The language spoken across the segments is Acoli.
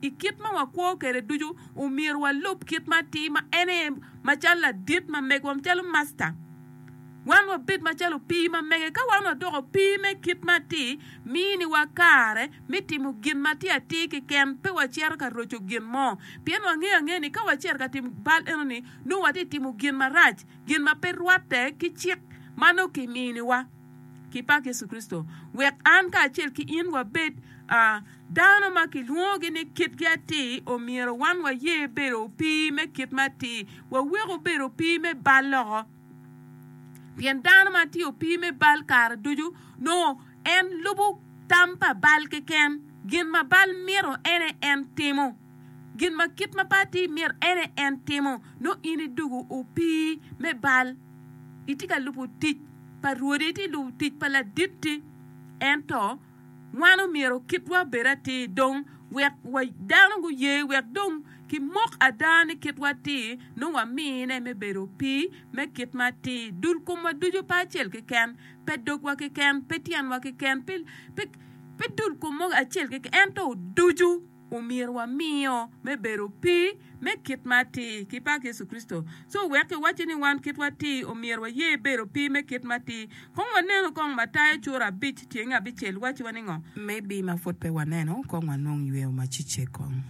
I kit ma wakwo kwede ducu, omyero walub kit ma atir ma en aye macalo ladit ma megwa, macalo masta. Wan wabed macalo opii ma mege. Ka wan wadoko opii me kit ma atir, miniwa kare me timo gin ma tye atir keken, pe wacito ka roco gin mo. Pien wangeyo angea ni ka wacito ka timo bal enoni, nongo watye ka timo gin marac, gin ma pe rwatte ki cik ma nongo kiminiwa ki Pak Yecu Kricito, wek an kacel ki in wabed. Dano ma kilwongogi ni kitgi atir omyero wan waye bedo opii me kit ma atir, wawek obed opii me bal loko. Pien dano ma tye opii me bal kare ducu nongo en lubo tam pa bal keken, gin ma bal mito en aye en timo, gin ma kit ma pe atir mito en aye en timo. Nongo in idoko opii me bal, itye ka lubo tic pa rwodi, iti lubo tic pa laditti. Ento Wan omyero kitwa obed atir dong wek wa dano guye wek dong kimok ada ni kitwa atir nongo wamine me bedo opii me kit ma atir. Dul komwa ducu pe acel keken, pe dogwa keken, pe tyenwa keken, pe dul kom mo acel keken ento ducu. omyero wamiyo me bedo pi me kit ma atir ki pak Yecu Kricito. Co wek iwacci ni wan kit watir omyero waye bedo pi me kit ma atir. Kong wanenu kong Matayo cura abic tyeng abicel wacci wa ningo. Maybe ma pud pe waneno kong wanong yweo ma cicce kong.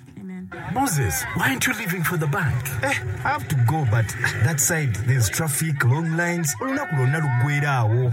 Moses why aren't you leaving for the bank? Eh, I have to go but that side there's traffic, long lines, olunok dong nalo gweda awo.